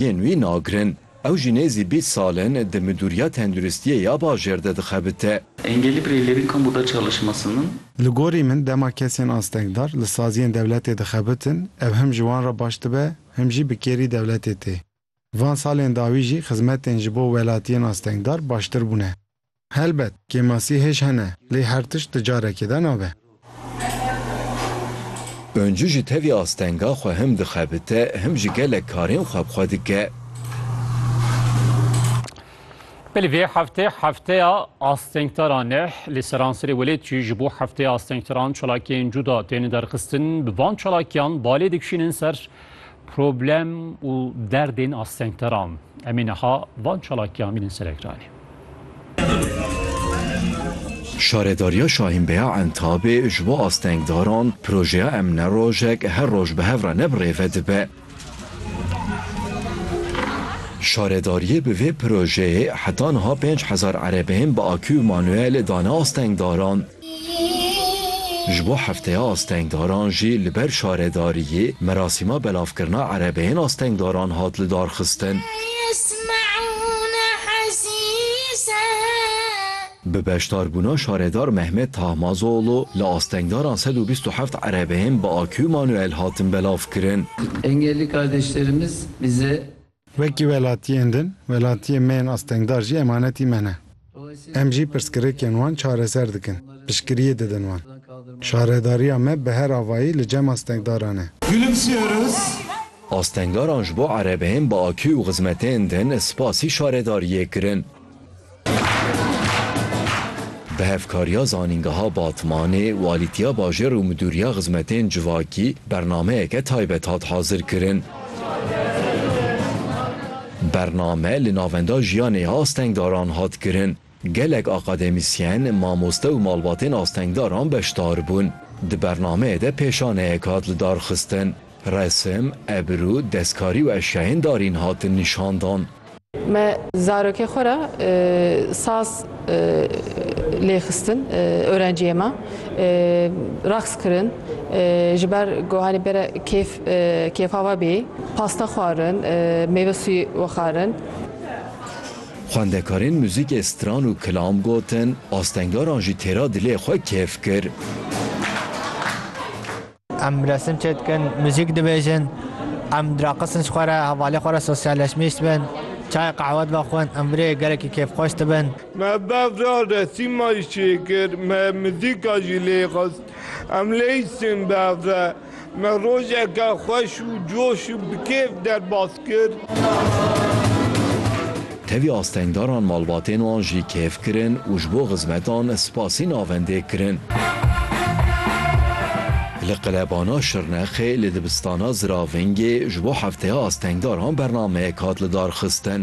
Yên wî nagirin. Ew jî nêzî bîst sal in di Midûriya Tenduristiyê ya bajêr de dixebite. Engelli bireylerin kamuda çalışmasının. Li gorî min dema kesên astengdar li saziyên dewletê dixebitin ev him ji wan re baş dibe him jî bi kêrî dewletê tê. Van salên dawî jî xizmetên ji bo welatiyên astengdar baştir bûne. Helbet, kêmasî hêj hene, lê her tişt di carekê de nabe. Oncu ji tevî astenga xwe him dixebite, him ji gelek karên xwe bi xwe dike. Belê vê heftê Hefteya Astengtaran e. Li seranserê welêtî ji bo Hefteya Astengtaran çalakiyên cuda tên derxistin. Bi van çalakiyan balê dikişînin ser Problem û derdên astengteran em ê niha van çalakiyan bînin ser ekranê. Şaredariya Şahînbeya Entabê ji bo astengdaran projeya Em ne rojek her roj bi hev re ne bi rêve dibe. Şaredariyê bi vê projeyê heta niha pênc hezar erebeyên bi akû û manûyelê dane astengdaran. Ji bo Hefteya Astengdaran jî li ber şaredariyê merasîma belavkirina erebeyên astengdaran hat lidarxistin. Bi beşdarbûna Şaredar Mehmet Tahmazoğlu li astengdaran sed û bîst û heft erebeyên bi akû manûel hatin belavkirin. Wekî welatiyên din, welatiyên me yên astengdar jî emanetî me ne. Em jî pirsgirêkên wan çareser dikin, piştgiriyê didin wan. Şaredariya me bi her avayî li cem astengdaran e. Gülümsüyoruz. Astengdaran ji bo erebeyên bi akî û xizmetên din spasî şaredariyê kirin. Bi hevkariya zanîngeha Batmanê, Walîtiya Bajêr û Midûriya Xizmetên Civakî bernameyeke taybet hat hazirkirin. Bername li Navenda Jiyanê Astengdaran hat kirin. Gelek akademîsyen, mamoste û malbatên astengdaran beşdar bûn. Di bernameyê de pêşaneyek hat lidarxistin. Resim, ebirû, destkarî û eşyayên darîn hatin nîşandan. Me zarokê xwe re saz lê xistin, orenciyê me reqs kirin ji ber ku hanê bêre kêf kêfa we bê, pasta xwarin, mêve sûyê wexarin. Xwendekarên muzîkê stran û kilam gotin, astengaran jî têra dilê xwe kêf kir. Em resim çêdikin, muzîk dibêjin, em diraqisin ji xwe re, hevalê xwe re sosyalleşmîş dibin, çayê qehwe divaxwin, em virêyê gelekî kêfxweş dibin. Me bev re resîma jî çêkir, me muzîka jî lê xist. Em lê îstin bev re, me rojeke xweş û coş û bi kêf derbas kir. Tevî astengdaran malbatên wan jî kêf kirin û ji bo xizmetan spasî navendê kirin. Li qilebana Şirnexê li dibistana Ziravengê ji bo hefteya astengdaran bernameyek hat lidarxistin.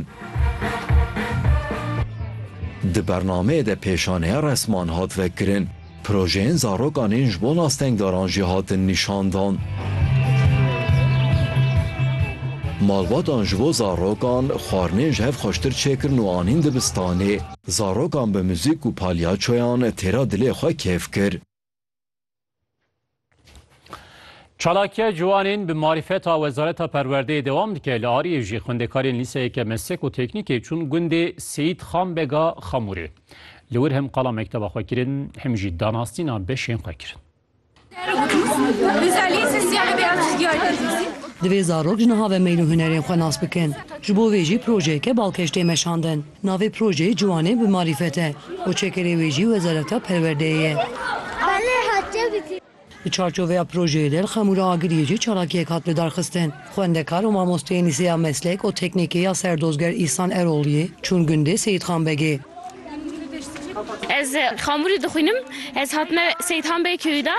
Di bernameyê de pêşaneya resman hat vekirin. Projeyên zarokan ên ji bon astengdaran jî hatin nîşandan. Malbatan ji bo zarokan xwarinên ji hev xweştir çêkirin û anîn dibistanê. Zarokan bi muzîk û palyaçoyan têra dilê xwe kêf kir. Çalakiya ciwanên bi marîfeta Wezareta Perwerdeyê dewam dike. Li Ariyê jî xwendekarên lîseyeke meslek û teknîkê çûn gundê Seyîd Xan Bega Xamûrê. Li wir hem qala mekteba xwe kirin hem jî danasîna beşên xwe kirin. Divê zarok ji niha ve meyl û hunerên xwe nas bikin. Ji bo vê jî projeyeke balkêş tê meşandin. Navê projeyê Ciwanê bi Marîfet e û çekerê wê jî Wezareta Perwerdeyê ye. Di çarçoveya projeyê de li Xemûra Agiriyê jî çalakiyek hat lidarxistin. Xwendekar û mamosteyên Lîseya Meslek û Teknîkê ya Serdozger Îhsan Erogliyê çûn gundê Seyîdxan Begê. Ez Xamûrê dixwînim. Ez hatime Seyîdxan Begê köyû de.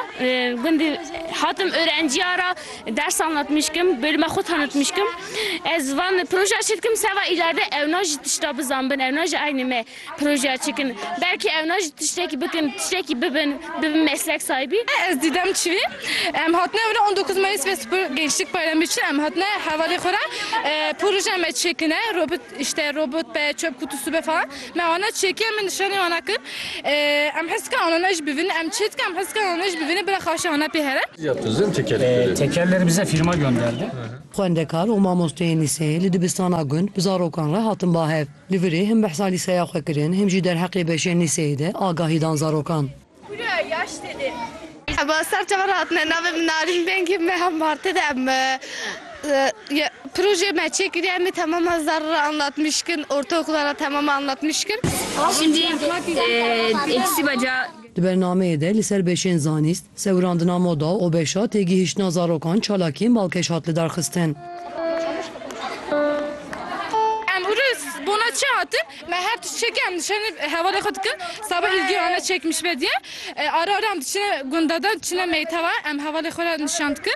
Gundê hatim örenciya ra. Ders anlatmîş kim, bölüme xwe tanitmîş kim. Ez van projeya çi dikim seba îlerde ewna jî tişta bizanbin, ewna jî aynê me projeya çi kin. Belkî ewna jî tiştekî bikin, tiştekî bibin, bibin meslek sahibî. Ez Dîdem Çivî. Em hatine were on dokuz Mayîs ve Spor Gençlik Bayramî çi em hatine hevalê xwe re projeya me çêkine, robot îşte, robot be, çöp kutusu be falan. Me wana çêkê me nişanî wana kir. Em hez dikin anane jî bivînin. Em çê dikin em hez dikin anane jî bivînin. Bila xaşê wana pê here. Tekerleri bize firma gönderdi. Xwendekar û mamosteyên lîseyê li dibistana gund bi zarokan re hatin bahev. Li virê him behsa lîseya xwe kirin him jî derheqê beşên lîseyê de agahî dan zarokan. Em a ser çavan hatine navê min Narîn Bengî me hev Martê de em projeyê me çêkiriye em ê temama zerrî re anlatmîş kin ortaokula re temama anlatmîş kin. Şindî îkisî beca. Di bernameyê de li ser beşên zanîst, sewirandina moda û beşa têgihiştina zarokan çalakiyên balkêş hat lidarxistin. Em îro bona çi hatin? Me her tişt çêkê em dişenê hevalê xwe dikin. Saba Îlgî ane çêkmiş ve diye. Ara ara em diçine gunda de, diçine meytewa em hevalê xwe re nîşan dikin.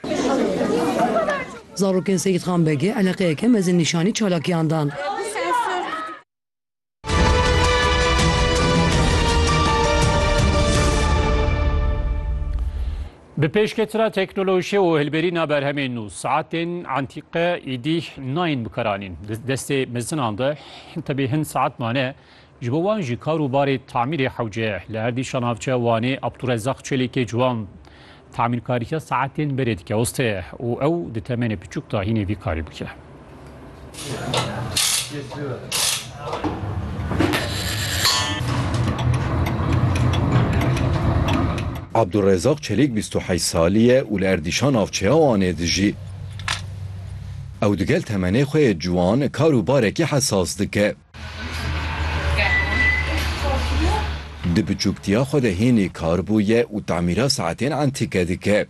Zarokên Seyîd Xan Begê eleqeyeke mezin nîşanî çalakiyan dan. Bi pêşketina teknolojî û hilberîna berhemên nû, saetên entîke îdî nayên bikaranîn. Di destê mezinan de tevî hin saet mane, ji bo wan jî kar û barê tamîrê hewce ye. Li Erdîşa Navçe Wanê Abdûrezzaq Çelîkê ciwan tamîrkariya saetên berê dike, uste ye û ew di temenê piçûk de hînê vî karî bike. Abdurezaq Çelîk bîst û heşt salî ye û li Erdîşa navçeya Wanê dijî. Ew digel temenê xwe yê ciwan kar û barekî hesas dike. Di biçûktiya xwe de hênî kar bûye û temîra saetên entîke dike.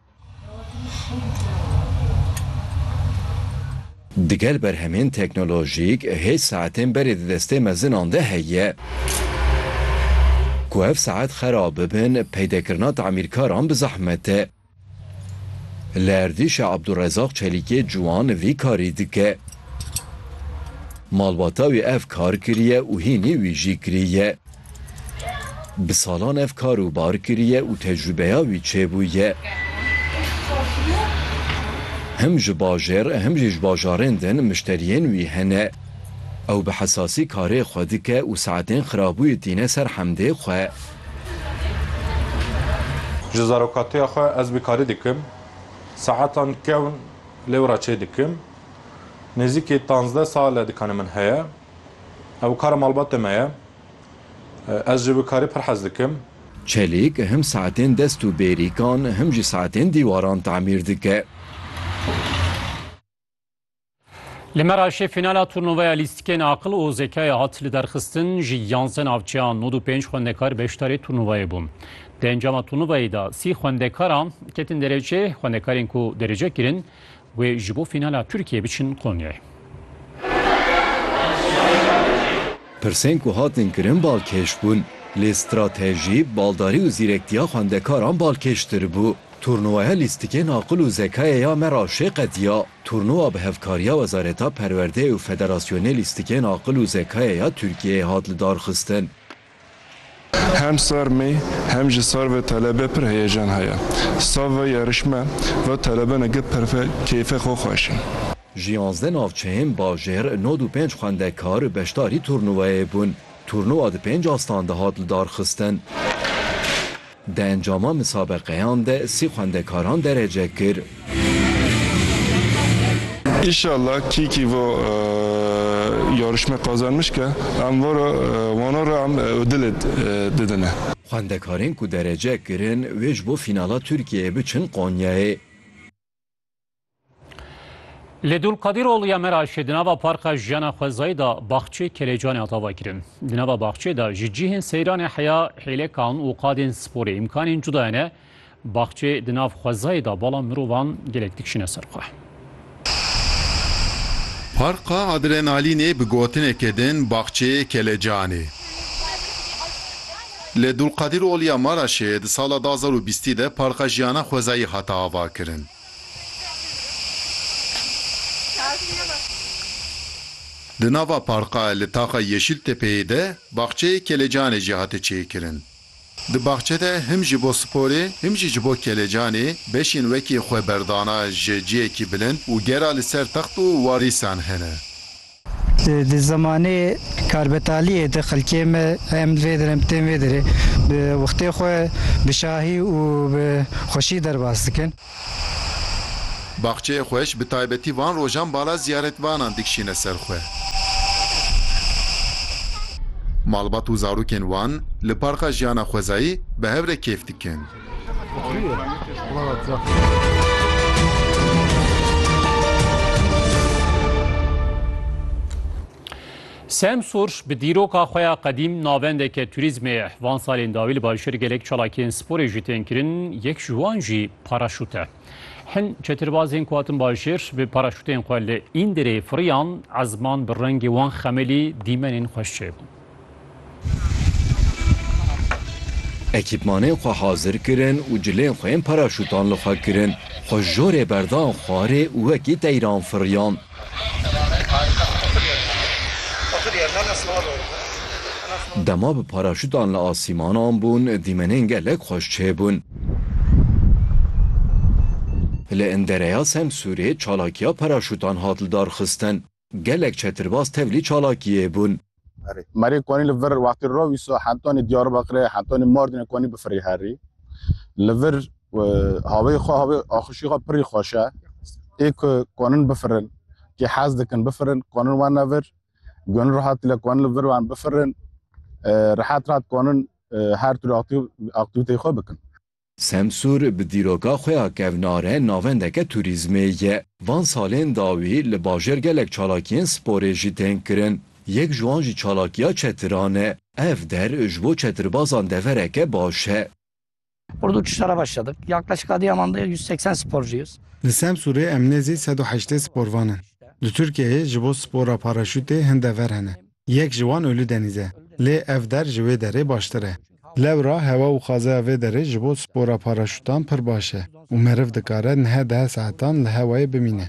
Digel berhemên teknolojîk hêj saetên berê di destê mezinan de heye. Ku ev saet xerab bibin peydekirina tamîrkaran bi zehmet e. Li erdîşa Abdurezaq Çelîkê ciwan vî karî dike. Malbata wî ev kar kiriye û hînî wî jî kirî ye. Bi salan ev kar û bar kiriye û tecrûbeya wî çêbûye. Him ji bajêr him jî ji bajarên din mişteriyên wî hene. Ew bi hesasî karê xwe dike û saetên xirabûyî tîne ser hemdê xwe. Ji zarokatiya xwe ez bi karî dikim. Saetan kewn lêwra çêdikim. Nêzîkî tanzdeh sal e dikane min heye. Ew kara malbatê me ye. Ez ji wî karî pir hez dikim. Çelîk him saetên dest û bêrîkan him jî saetên dîwaran tamîr dike. Li Meraşê fînala turnuvaya lîstikên aqil û zekayê hat liderxistin. Ji yanzdeh navçeyan nod û pênc xwendekar beşdarî turnuvayê bûn. Di encama turnuvayê de sî xwendekaran ketin derece. Xwendekarên ku derece kirin Wê ji bo fînala Tirkiyeyê biçin Konyayê. Pirsên ku hatin kirin balkêş bûn, lê stratejî, baldarî û zîrektiya xwendekaran balkêştir bû. Turnuvaya lîstikên aqil û zekayê ya me re şê qediya. Turnuva bi hevkariya Wezareta Perwerdeyê û Federasyonê Lîstikên Aqil û Zekayê ya Tirkiyeyê hat lidarxistin. Hem sar mê hem jî sar ve telebe pir heyecan heye. Sav ve yarışme ve telebe ne geh perfe keyfe xo xweş e. Ji yanzdeh navçeyên bajêr nod û pênc xwendekar beşdarî turnuveyê bûn. Turnuva di pênc astan de hat lidarxistin. Di encama misabeqeyan de sî xwendekaran derece kir. Înşallah kîkî vo yarışme qazanmiş ke em vora wana re em odilê didine. Xwendekarên ku derece kirin wê ji bo fînala Tirkiyeyê biçin Konyayê. Li Dulqadir Ol ya Meraşê di nava Parka Jiyana Xwezayî da baxçê Kelecanê hat avakirin. Di nava baxçê da ji cihên seyranê heya hêlekan û qadên sporê îmkanên cuda hene. Baxçê di nav xwezayê da bala mirovan gelek dikişine ser xwe. Parka Adrenalînê bi gotineke din Baxçê Kelecanê. Li Dulqadîrol ya Maraşê di sala du hezar û bîstî de Parka Jiyana Xwezayî hate avakirin. Di nava parka li taxa Yeşîl Tepeyê de baxçeyê kelecanê jî hate çêkirin. Di baxçe de him ji bo sporê him jî ji bo kelecanê beşên wekî xweberdana ji ciyekî bilind û gera li ser text û warîsan hene. Di zemanê karbetaliyê de xelkê me em vê derê em tên vê derê bi wextê xwe bi şahî û bi xweşî derbas dikin. Baxçeyê xweş bi taybetî van rojan bala ziyaretvanan dikişîne ser xwe. Malbat û zarokên wan li parka jiyana xwezayî bi hev re kêf dikin. Sam Sorş bi dîroka xwe ya qedîm navendeke turîzmê ye. Van salên dawî li Balşêr gelek çalakiyên sporê jî tên kirin, yek ji wan jî paraşût e. Hin çetirbazên ku hatin Balşêr bi paraşûtên xwe li Îndirê firiyan, ezman bi rengê wan xemelî dîmenên xweş çêbûn. Ekîpmanên xwe hazir kirin û cilên xwe yên paraşûtan li xwe kirin. Xwe ji jorê berdan xwarê û wekî teyran firiyan. Dema bi paraşûtan li asîmanan bûn, dîmenên gelek xweş çêbûn. Li Indereya Semsûrê çalakiya paraşûtan hat lidarxistin. Gelek çetirbaz tevlî çalakiyê bûn. Merê konî li vir wextî rov îso hentonê Diyarbekirê, hentonê Mardinê konî bifirî herî. Li vir haveyê xwe havê axişî xwe pirî xweş e. Ê ku konin bifirin, kê hez dikin bifirin konin wene vir. Gunî rehat dile konin li vir wan bifirin. Rehet rehat konin her tûrê aktîvîteyê xwe bikin. Semsûr bi dîroka xwe ya kevnare navendeke tûrîzmê ye. Van salên dawî li bajêr gelek çalakiyên sporê jî tên kirin. Yek ji wan jî çalakiya çetiran e. Ev der ji bo çetirbazan devereke baş e. Ordu Çiştara başladık. Yaklaşık Adıyaman da yüz seksen sporcuyuz. Li Semsûrê em nêzî sed û heştê sporvan in. Li Tirkiyeyê ji bo spora paraşûtê hin dever hene. Yek ji wan Ulu Denîz e. Lê ev der ji wê derê baştir e. Lewra hewa û xazeya vê derê ji bo spora paraşûtan pir baş e û meriv dikare niha deh saetan li hewayê bimîne.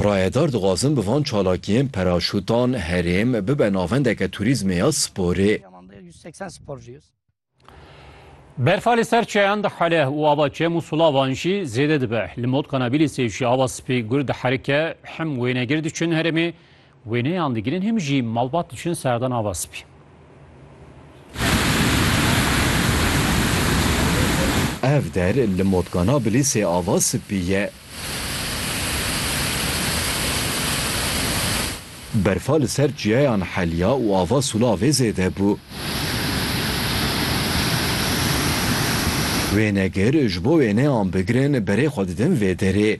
Rayedar dixwazin bi van çalakiyên paraşûtan herêm bibe navendeke turîzmê ya sporê. Berfa li ser çeyan dihele û ava çem û sulavan jî zêde dibe. Li mod Kanabîlîsê jî ava spî gur diherike, hem wênegir diçin herêmê, wêneyan digirin hem jî malbat diçin serdan ava spî. Ev der li mod Kanabîlîsê ava spî ye. Berfa li ser çiyayan heliya û ava sûlavê zêde bû. Wênegir, ji bo wê neyan bigirin berê xwe didin vê derê.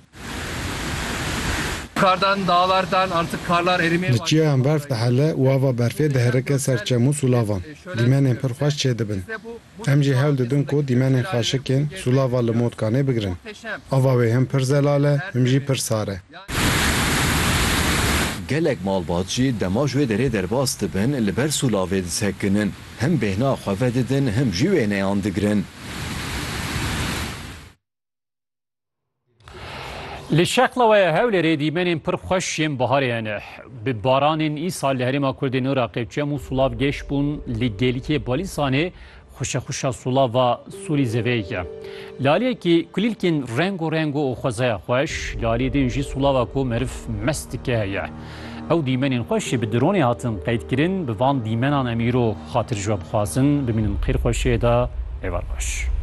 Li çiyayan berf dihele û ava berfê diherike ser çem û sûlavan. Dîmenên pir xweş çêdibin. Em jî hewl didin ku dîmenên xaşikên Sûlava li Motkanê bigirin. Ava wê him pir zelal e, him jî pir sar e. Gelek malbat jî dema ji wê derê derbas dibin li ber Sûlavê disekinin. Him bêhna xwe vedidin him jî wêneyan digirin. Li şeqlawaya Hewlêrê dîmenên pir xweş yên biharê hene. Bi baranên îsal li herêma Kurdê nû ra qeçem û sulav geş bûn li gêlikê Balîsanê xuşexuşa sulava Sûrî zeveyek e. Li aliyekî kulîlkên rengo rengo û xwezaya xweş, li aliyê din jî sulava ku meriv mest dike heye. Ew dîmenên xweş jî bi dronê hatin qeydkirin, bi van dîmenan em îro xatircwe bixwazin. Bimînin xêr xweşiyê de, êvar xweş.